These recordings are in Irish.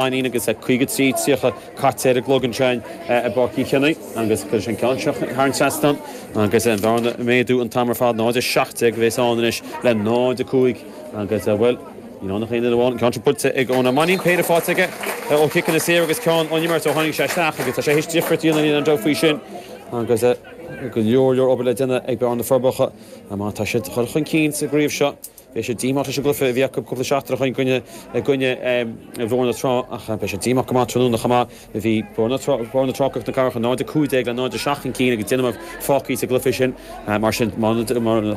Sheáinín agus a 53, 30 caite ar an gclog ansin i bPáirc Uí Chionaoith agus cuireann sé an ceann seo thar an seastán agus an bhearna ag méadú an t-am ar fad, 0, 17 a bheas ann anois le 0, 5 agus, bhuel, níl ann ach aon duine amháin, an ceann seo buailte ag Eoin Ó Mainnín, péire faighte aige ó chiceanna saora agus ceann ón imirt ó tháinig sé isteach agus tá sé théis difríocht a dhéanamh, níl aon dabht faoi sin agus go leor leor obair le déanamh ag Bearna na Forbacha má tá siad a ghoil chun cinn sa gcraobh seo. Beidh siad díomách leis an gcluiche a bhí acu cúpla seachtain ó shin i gcoinne Bhóthar na Trá ach beidh siad díomách go maith tráthnóna chomh maith. Bhí Bóthar na Trá agus na Cathrach 0 15 le 0 7 chun cinn agus Dún Mór Mhic Éil sa gcluiche sin. Mar sin, má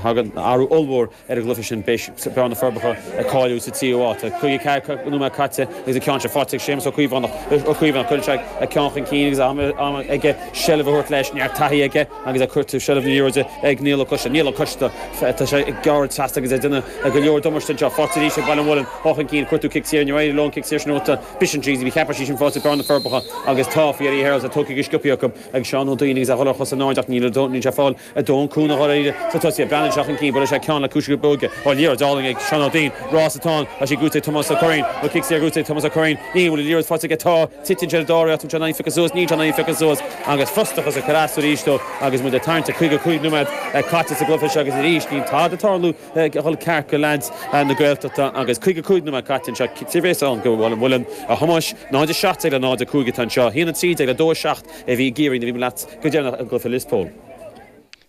thagann athrú ollmhór ar an gcluiche sin beidh Bearna na Forbacha ag cáiliú sa tríú háit. Tá caoga ceathair nóiméad caite agus an ceann seo faighte ag Séamus Ó Caomhánach. Cuireann sé a cheann chun cinn agus am aige seilbh a thabhairt leis. Neart taithí aige. Agus a cuirtear seilbh na liathróide ag Niall Ó Coiste, Niall Ó Coiste, tá sé ag gearradh trasna agus ag déanamh go leor damáiste anseo, faighte arís ag Baile an Mhuilinn, ó chun cinn, ag cuartú cic saor, níor éirigh leo an cic saor sin a bhuachtáil, B'shin tríd an cheapaire sí sin faighte ag Bearna na Forbacha agus tá, faoi Eddie Hearld, tá tugtha go sciobtha acu ag Seán Ó Duinn agus é ag dul ar chosa in airde ach níl sé níl sé fáil aon chúnamh a dhul éirí sa tosaithe, Breandan seo chun cinn, buaileann sé ceann le ciumhais na bróige, ó liathróid álainn ag Seán Ó Duinn, rás atá ann, tá sí gnóite ag Tomás Ó Curraoin, nó cic saor gnóite ag Tomás Ó Curraoin, níl, bhfuil an liathróid faighte aige? Tá. Titeann sé ar dóigh, féachann sé an bhfaigheadh sé suas, níl sé in ann fanacht suas agus frustachas ag cur as arís dó agus muid ag tarraingt ar 55 nóiméad caite sa gcluiche seo agus arís níl tada ag tarlú ag dul ceart do leaids na Gaeltachta agus 55 nóiméad caite anseo. Tá a fhios againn go bhfuil an Muileann i gceannas. 0 17 le 0 5 atá anseo. 1 13 le 2 7 a bhí i gCiarraí nuair bhí muid leat go deireanach i gcluiche Lios Póil.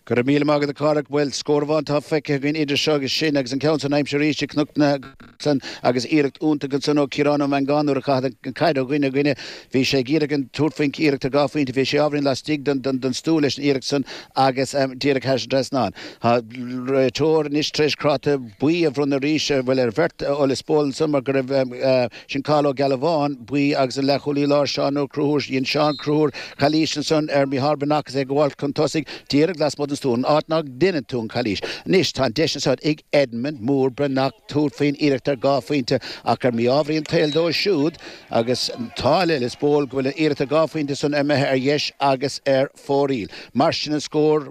Go raibh míle maith agat a Phádraig. Bhuel, scór amháin atá feicthe againn idir seo agus sin, agus an ceann san aimsithe arís ag Cnoc na gCaiseal agus iarracht iontach ansan ó Chiarán Ó Meangáin nuair a caitheadh an caid ó dhuine go duine. Bhí sé ag iarraidh tabhairt faoin iarracht ar dhá phointe, bhí sé ábhairín lastigh don stua leis an iarracht san agus díreach thar an trasnán. Tá an réiteoir anois tar éis cráta buí a bhronnadh arís, bhuel ar bheirt, ó Lios Póil ansan mar go raibh. Sin Cathal Ó Gealbháin, buí, agus an leathchúlaí láir Seán Ó Conchúir. Dhein Seán Ó Conchúir calaois ansan ar Micheál Breathnach agus é ag gabháilt chun tosaigh díreach lasmuigh den stua, an áit ná deineann tú an chalaois. Anois tá an deis anso ag Edmund Mór Breathnach tabhairt faoin iarracht ar dhá phointe ach ar mhí-ámharaí an tsaoil dóibh siúd agus tá áthas ar Lios Póil go bhfuil an iarracht ar dhá phointe san imithe ar dheis agus ar fóraíl. Mar sin an scór,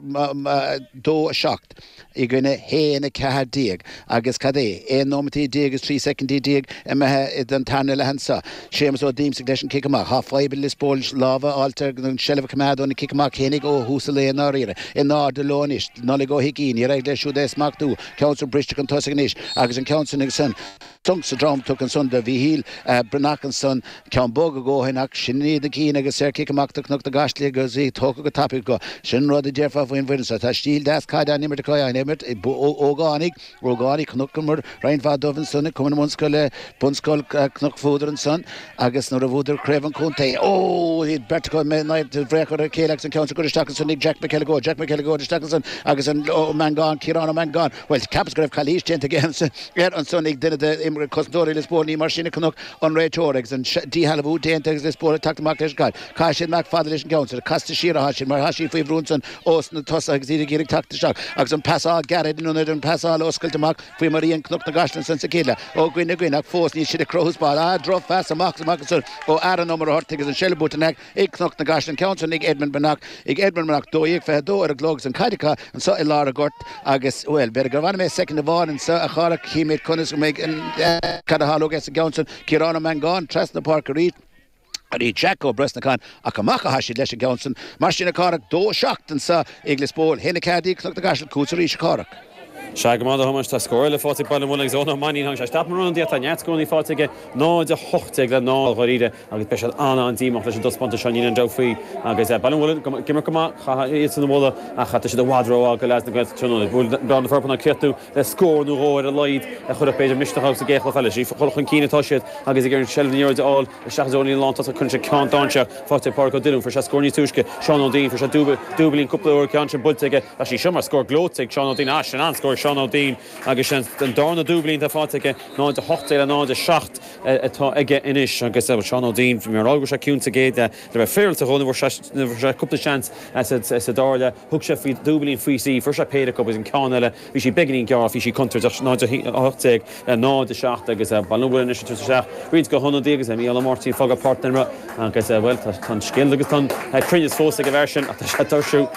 dó a seacht. i gcoinne a haon 14 agus, cad é, 11 nóimeataí is 13 soicind imithe den tarna leath anso. Séamus Ó Díomsaigh leis an cic amach. Tá fadhb ag Lios Póil lámh a fháil ar an seilbh a choimeád óna gcic amach féinig ó thús an lae i ndáiríre. In airde leo anois. Nollaig Ó hUigín, níor éirigh leis siúd é a smachtú. Ceann san briste chun tosaigh anois agus an ceann san Tonc sa drom tugtha ansan do Mhícheál Breathnach ansan ceann bog a dhóithin ach sin iad na cinn agus an cic amach do Cnoc na gCaiseal agus í tógtha go tapaidh go. Sin an rud a déarfá faoin bhfoireann so. Tá stíl deas caide á n-imirt acu, á n-imirt ag ógánaigh, ógánaigh chonaiceamair roinnt mhaith dóibh ansan ag Cumann na mBunscoile, Bunscoil Chnoc Fuadair ansan agus nuair a bhuadar Craobh an Chontae, oh, iad beirt acu, mé náir do bhréag chur ar a chéile agus an ceann so á chur isteach ansan ag Jack McElligott, Jack McElligott isteach ansan agus an, Ó Mangáin, Ciarán Ó Mangáin. Bhuel, cheapas go raibh calaois déanta aige ormsa, air ansan, ag duine de imreoirí, cosantóirí Lios Póil, ní mar sin a chonaic an réiteoir, agus an díshealbhú déanta agus Lios Póil ag teacht amach leis an gcaid. Caithfidh siad amach fada leis an gceann so, casta siar atá siad, mar tá siad faoi bhrú ansan ós na tosaithe agus iad ag iarraidh teacht isteach, agus an pasáil gearraid in ionad an pasáil oscailte amach faoi mar a dhein Cnoc na gCaiseal ansan sa chéad leath. Ó dhuine go duine, ach fós níl siad ag cruthú spás. Ah, drochphas amach is amach ansan ó Aaron Ó Murchártaigh agus an seilbh buaite in aice Ag Cnoc na gCaiseal an ceann san ag Edmund Breathnach ag Edmund Breathnach 12 22 ar an gclog agus an caid acu anso i lár an ghoirt agus bhuel b'fhéidir go bhfanfaidh mé soicind amháin anso a Chárthach chífimid conas a bheidh cad a tharlóidh sa gceann sin Ciarán Ó Mangáin trasna na páirce arís ar Jack Ó Brosnacháin ach amach atá siad leis an gceann sin mar sin a Chárthach 2 7 anso ag Lios Póil 1 4 ag Cnoc na gCaiseal chugatsa arís a Chárthach. Seadh, go maith, a Thomáis, tá scór eile fáighte ag Baile an Mhuilinn agus Eoghan Ó Mainnín. Tháinig sé isteach mar an ionadaí ach tá neart scórannaí fáighte aige, 0, 18 le 0, dháiríre, agus beidh siad an-an díomách leis an dtaispeántas seo, níl aon dabht faoi, agus Baile an Mhuilinn ag imirt go maith, chaithfeá iadsan a mholadh, ach tá siad i bhfad rómhaith do leaids na Gaeltachta tráthnóna. Bhuail Gleann na Forbanna cleithiú le scór nó dhó ar a laghad a chuirfeadh b'fhéidir misneach agus a gcéachta a chailleadh. Is ag dul chun cinn atá siad agus ag iarraidh seilbh na liathróide a fháil, Seachas ó líne lántosach chun sé ceann d'Áinse, fáighte ag Pádhraic Ó Duibhne, fuair sé scór níos túisce, Seán Ó Duinn, fuair sé dúbail, dúbailín cúpla uair, ceann sin buailte aige, ach sí seo mar scór gleoite ag Seán Ó Duinn, ah sin an-scór ag Seán Ó Duinn, agus sin an dárna dúbailín atá fáighte aige, 0, 18 le 0, 7 atá aige anois, agus bhuel Seán Ó Duinn, bhí mé a' rá go bhfuil sé ciúin sa gcéad leath, le bheith féaráilte dhó, ní bhfuair sé, ní bhfuair sé cúpla seans sa dara leath. Thug sé faoi dhúbailín faoi thrí, fuair sé péire acu agus an ceann eile bhí sí beagáinín gearr, bhí sí contúirteach. 0 18 0 7 agus Baile an Mhuilinn anois ag tabhairt isteach roinnt de na hionadaithe agus Micheál Ó Máirtín ag fágáil páirc na himeartha agus bhuel tá an scil agus tá an cruinneas fós ag an bhfear sin ach tá sé ag tuirsiú.